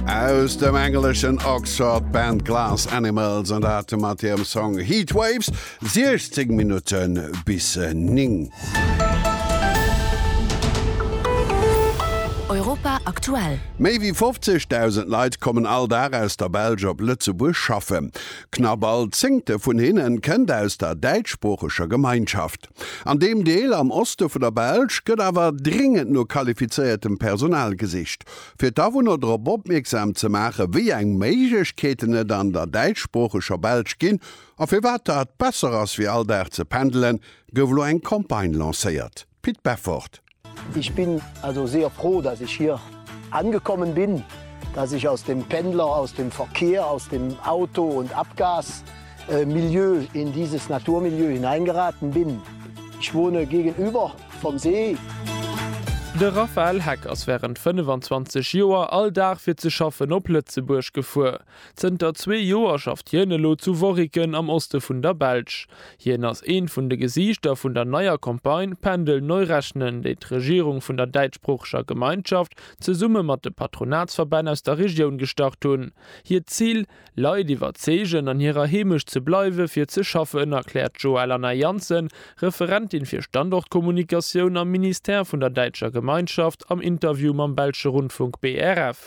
Aus dem engleschen Oxford Band Glass Animals an dat mat hirem Song Heatwaves, 16 Minutte bis 9. Europa aktuell. Méi wéi 50.000 Leit kommen all Dag aus der Belsch op Lëtzebuerg schaffen. Knapp all zéngte vun hinnen kënnt aus der däitschsproocheger Gemeinschaft. An deem Deel am Oste vun der Belsch gëtt awer dringend no qualifizéiertem Personal gesicht. Fir d'Awunner drop opmierksam ze maachen, wéi eng Méiglechkeeten et an der däitschsproocheger Belsch ginn a firwat dat besser ass wéi all Dag ze pendelen, gouf elo eng Campagne lancéiert. Pit Beffort. Ich bin also sehr froh, dass ich hier angekommen bin, dass ich aus dem Pendler, aus dem Verkehr, aus dem Auto und Abgas, äh, Milieu in dieses Naturmilieu hineingeraten bin. Ich wohne gegenüber vom See. De Raphaël Heck ass wärend 25 Joer all Dag fir ze schaffen op Lëtzebuerg gefuer. Zënter zwee Joer schafft hien elo zu Worriken am Oste vun der Belsch. Hien ass eent vun de Gesiichter vun der neier Campagne Pendel neu rechnen, déi d'Regierung vun der däitschsproocheger Gemeinschaft zesumme mat de Patronatsverbänn aus der Regioun gestart hunn. Hiert Zil, Leit iwwerzeegen, an hirer Heemecht ze bleiwe fir ze schaffen, erkläert d'Joëlanna Janssen, Referentin fir Standortkommunikatioun am Ministère vun der däitscher Gemeinschaft, am Interview mam belsche Rundfunk BRF.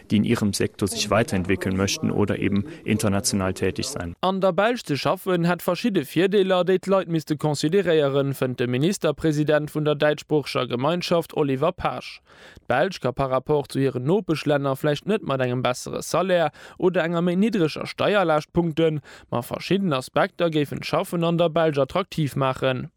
déi in ihrem Sektor sich weiterentwickeln möchten oder eben international tätig sein. An der Belsch ze schaffen, hätt verschidde Virdeeler, déi d'Leit misste consideréieren, fënnt de Ministerpresident vun der däitschsproocheger Gemeinschaft Oliver Paasch. D'Belsch ka par rapport zu hiren Nopeschlänner vläicht net mat engem bessere Salaire oder enger méi niddreger Steierlaascht punkten, ma verschidden Aspekter géifen d'Schaffen an der Belsch attraktiv maachen.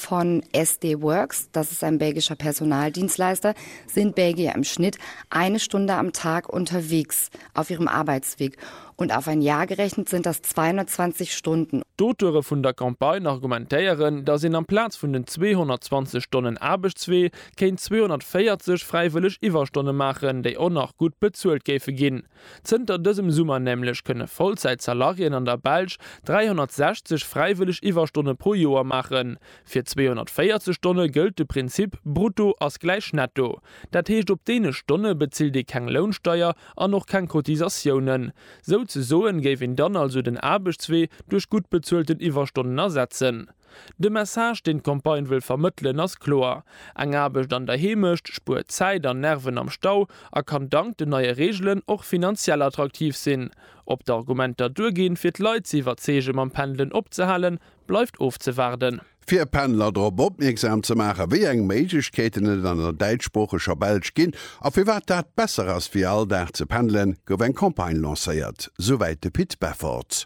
Von SD Worx, das ist ein belgischer Personaldienstleister, sind Belgier im Schnitt eine Stunde am Tag unterwegs auf ihrem Arbeitsweg und auf ein Jahr gerechnet sind das 220 Stunden. D'Auteure vun der Campagne argumentéieren, datt een amplaz vun den 220 Stonnen Aarbechtswee kéint 240 fräiwëlleg Iwwerstonne maachen, déi och nach gutt bezuelt géife ginn. Zënter dësem Summer nämlech kënne Vollzäit-Salarien an der Belsch 360 fräiwëlleg Iwwerstonne pro Joer maachen. Fir 240 Stonne gëllt de Prinzip Brutto ass gläich Netto. Dat heescht op deene Stonne bezilt ee keng Lounsteier an och keng Cotisatiounen. Souzesoen géif een dann also den Aarbechtswee duerch gutt bezuelten Iwwerstonnen ersetzen. De Message, deen d'Campagne wëll vermëttelen, ass kloer, Eng Aarbecht an der Heemecht spuert Zäit an Nerven am Stau a kann dank den neie Reegelen och finanziell attraktiv sinn. Ob d'Argumenter duerginn, fir d'Leit ze iwwerzeege mam Pendelen opzehalen, bleift ofzewaarden. Fir Pendler drop opmierksam ze maachen, wéi eng Méiglechkeeten et an der däitschsproocheger Belsch ginn a firwat dat besser ass wéi all Dag ze pendelen, gouf eng Campagne lancéiert, souwäit de Pit Befforts.